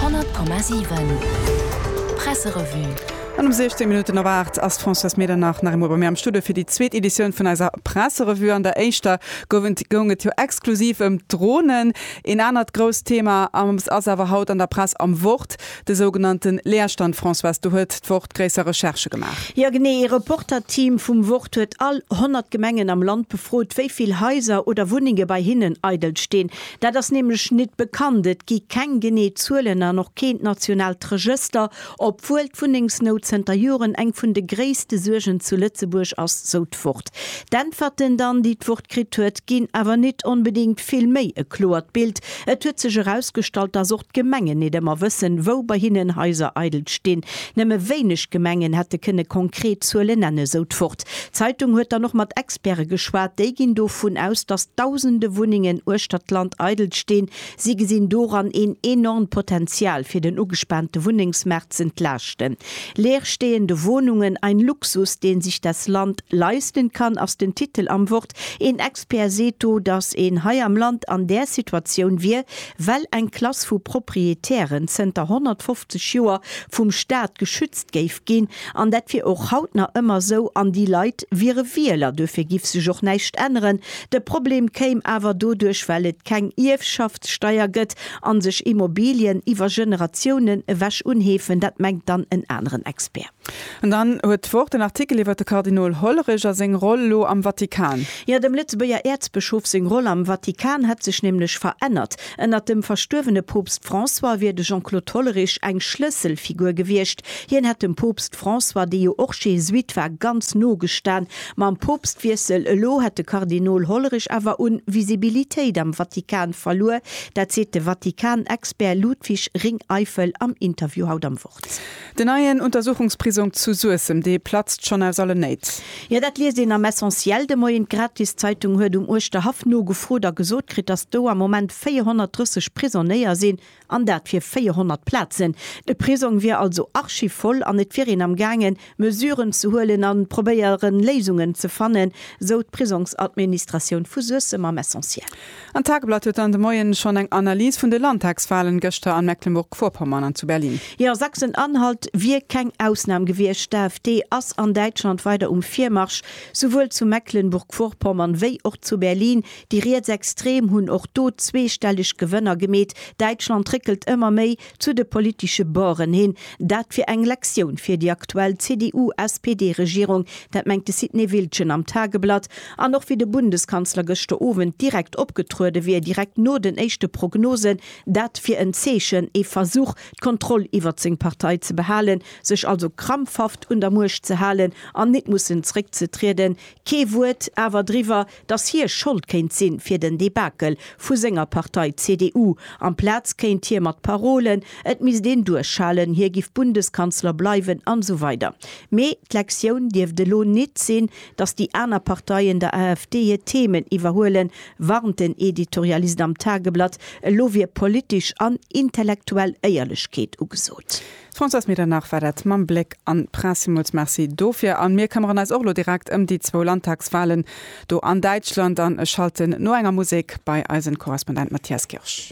100,7 Presserevue An um 16 Minutten op 8 ass d'Françoise Medernach nach eemol bei mir am Studio fir déi zweet Editioun vun eiser Presserevue. An der éischter gouf et, goung et jo exklusiv ëm d'Dronen. Een anert grousst Thema ass awer haut an der Press am Wort, de sougenannte Leerstand. Françoise, do huet d'Wort gréisser Recherchë gemaach. Jo genee, ee Reporterteam vum Wort huet all 100 Gemengen am Land befrot, wéi vill Haiser oder Wunnenge bei hinnen eidel stinn. Dat ass nämlech nit bekannt. Et gi keng genee Zuelen an och keent nationaalt Regëster, obwuel d'Wunnengsnout zënter Joren eng vun de gréisste Suergen zu Lëtzebuerg ass, sou d'Wort. D'Äntwerten dann, déi d'Wort kritt huet, ginn awer nit onbedéngt vill méi e kloert Bild. Et huet sech erausgestallt, dass D'Gemengen nit ëmmer wëssen, wou bei hinnen Haiser eidel stinn. Nëmme wéineg Gemengen hätte kënne konkret Zuele nenne, sou d'Wort. D'Zeitung huet dann och mat Experte geschwat. Déi ginn dovun aus, datt Dausende Wunnengen uechter d'Land eidel stinn. Si gesinn doran een enormt Potenzial, fir den ugespaante Wunnengsmaart z'entlaaschten. Leerstehende Wohnungen, ein Luxus, den sich das Land leisten kann, ass den Titel am Wort. Kontakt. Een Expert seet do, datt een hei am Land an där Situatioun wier, well eng Klass vu Proprietären zënter 150 Joer vum Staat geschützt géif ginn. An dat wier och haut nach ëmmer esou. An déi Leit wiere Wieler. Dofir giff sech och näischt änneren. De Problem kéim awer doduerch, well et keng Ierfschaftssteier gëtt a sech Immobilien iwwer Generatiounen ewech unheefen. Dat mengt dann en aneren Expert. An dann huet d'Wort en Artikel iwwer de Kardinol Hollerich a seng Roll lo am Vatikan. Jo, dem Lëtzebuerger Äerzbëschof seng Roll am Vatikan hätt sech nämlech verännert. Ënnert dem verstuerwene Poopst François wier de Jean-Claude Hollerich eng Schlësselfigur gewiescht. Hien hätt dem Poopst François, dee jo och Jesuit war, ganz no gestan. Mam Poopstwiessel elo hätt de Kardinol Hollerich awer un Visibilitéit am Vatikan verluer. Dat seet de Vatikan-Expert Ludwig Ringeifel am Interview haut am Wort. Den neien Untersuchungsprisong zu Suessem, dee platzt schonn aus allen Néit. Jo, dat liest een am Essentiel de Moien. D'Gratiszeitung huet um Uerschterhaff nogefrot a gesot kritt, datt do am Moment 430 Prisonnéier sinn, an dat fir 400 Plazen. De Prisong wier also archivoll an et wier een am gaangen, Mesuren ze huelen a probéieren, Léisungen ze fannen, sou d'Prisongsadministratioun vu Suessem am Essentiel. An d'Tageblatt huet dann de Moien schonn eng Analys vun de Landtagswahlen gëschter an Mecklenburg-Vorpommern an zu Berlin. Jo, Sachsen-Anhalt wier keng Ausnam gewiescht. D'AfD ass an Däitschland weider um Virmarsch, souwuel zu Mecklenburg-Vorpommern wéi och zu Berlin. Déi Rietsextrem hunn och do zweestelleg Gewënner gemeet. Däitschland réckelt ëmmer méi Zu de politesche Borden hin, Dat wier eng Lektioun fir déi aktuell CDU-SPD-Regierung. Dat mengt de Sidney Wiltgen am Tageblatt. An och wéi de Bundeskanzler gëschter Owend direkt opgetruede wier, direkt no den éischte Prognosen, dat wier en Zeechen, ee Versuch, d'Kontroll iwwert seng Partei ze behalen, sech also krampfhaft un der Muecht ze halen an nit mussen zréckzetrieden. Kee Wuert awer driwwer, dass hie Schold kéint si fir den Debakel vu senger Partei CDU. Amplaz kéint hie mat Parolen, et misst een duerchhalen, hie giff Bundeskanzler bleiwen an esou weider. Mee d'Lektioun dierft elo nit sinn, dass déi aner Parteien der AfD hir Themen iwwerhuelen, warnt den Editorialist am Tageblatt. Elo wier politesch an intellektuell Éierlechkeet ugesot. Françoise Medernach war dat mam Bléck an d'Press. Villmools Merci dofir. A mir këmmeren eis och elo direkt ëm déi zwou Landtagswahlen do an Däitschland an schalten no enger Musek bei eisen Korrespondent Matthias Kirsch.